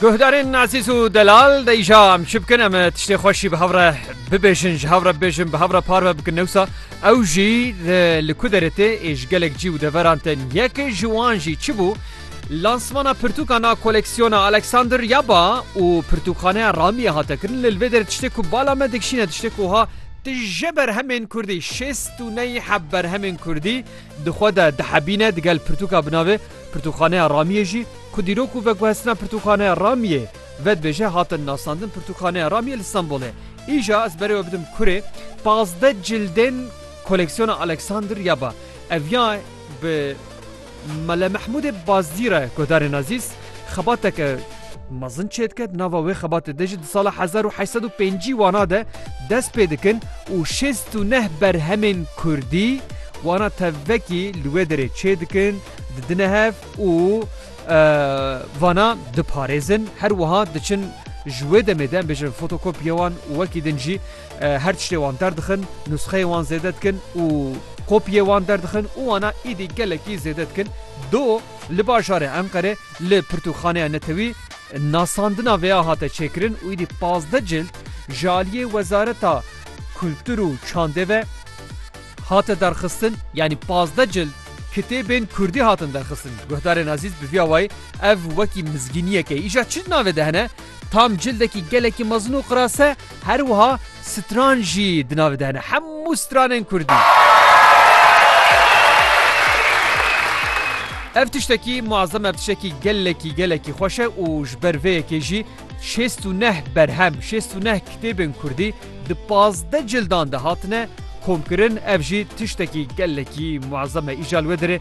Guhdarên Ezîz û Delal de îja em çi bikin em tiştê xwe şî bi hev re bibêjin ji hev re bibêjin bi hev re parve bikin newsa ew jî li ku derê tê ê ji gelek cî û deveran tên yekê ji wan jî çi bû Lansmana pirtûkan a koleksiyona Alexander Yaba û pirtûkxaneya Ramiyê hate kirin li vê derê tiştê ku bala me dikişîne tiştê ku ha tije berhemên Kurdî şêst û ney heb berhemên Kurdî di xwe de dihebîne digel pirtûka bi navê Pirtûkxaneya Ramiyê jî ku dîrok û veguhestina Pirtûkxaneya Ramiyê vedibêje hate nasandin Pirtûkxaneya Ramiyê li Stenbolê. Îja ez berê we bidim kurê pazdeh cildên koleksiyona Alexander ya ba. Ev ya bi Mele Mehmûdê Bazdî re guhdarên Azîz xebateke. Mezin çêdiket nava wê xebatê de jî di sala hezar û heşt sed û pêncî wana de dest pê dikin û şêst û neh berhemên kurdî wana tevvekî li wê derê çêdikin, didine hev û vana diparêzin her wiha diçin ji wê demê de em bêjin fotokopyê wan û wekî din jî her tiştê wan derdixin, nusxeyê wan zêde dikin û kopyê wan derdixin û wana êdî gelekî zêde dikin. Do li bajarê Enqerê Li Pirtûkxaneya Netewî nasandina vê ya hate çêkirin û êdî pazdeh cild ji aliyê Wezareta Kultur û Çandê ve hate derxistin. Yanî pazdeh cild kitêbên kurdî hatin derxistin. Guhdarên Azîz bi vî awayî ev wekî mizgîniyek e. Îja çi di navê de hene? Tam cildekî gelekî mezin û qirase. Her wiha stran jî di navê de hene. Hemû stranên kurdî. Ev tiştekî muezzem ev tiştekî gelekî gelekî xweş e û ji ber vê yekê jî şêst û neh berhem şêst û neh kitêbên kurdî di pazdeh cildan de hatine komkirin ev jî tiştekî gelekî muezzem e îja li wê derê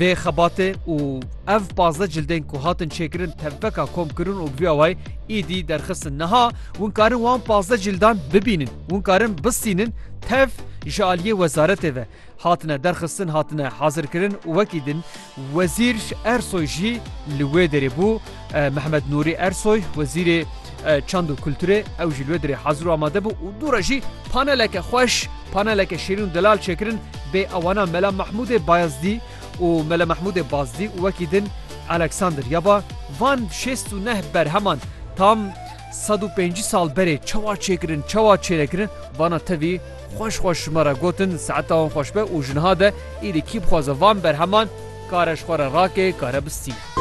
Vê xebatê û ev pazdeh cildên ku hatin çêkirin tevbeka komkirin û bi vî awayî îdî derxistin. Niha hûn karin wan pazdeh cîldan bibînin. Hûn karin bistînin tev ji aliyê wezaretê ve hatine derxistin, hatine hazirkirin û wekî din Wezîr Ersoy jî li wê derê bû. Mehmet Nûrî Ersoy, Wezîrê Çand û Kulturê ew jî li wê dirê hazir û amade bû û dû re jî paneleke xweş, paneleke şêrîn û delal çêkirin bê awana Mela Mehmûdê Bayazdî û Mela Mehmûdê Bazdî û wekî din Alexander ya ba. Van şêst û neh berheman tam sed û pêncî sal berê çawa çêkirin, çawa çênekirin vana tevî xweş xweş ji me re gotin saeta wan xweş be û ji niha de îdî kî bixwaze van berheman kare ji xwe re rake kare bistîne.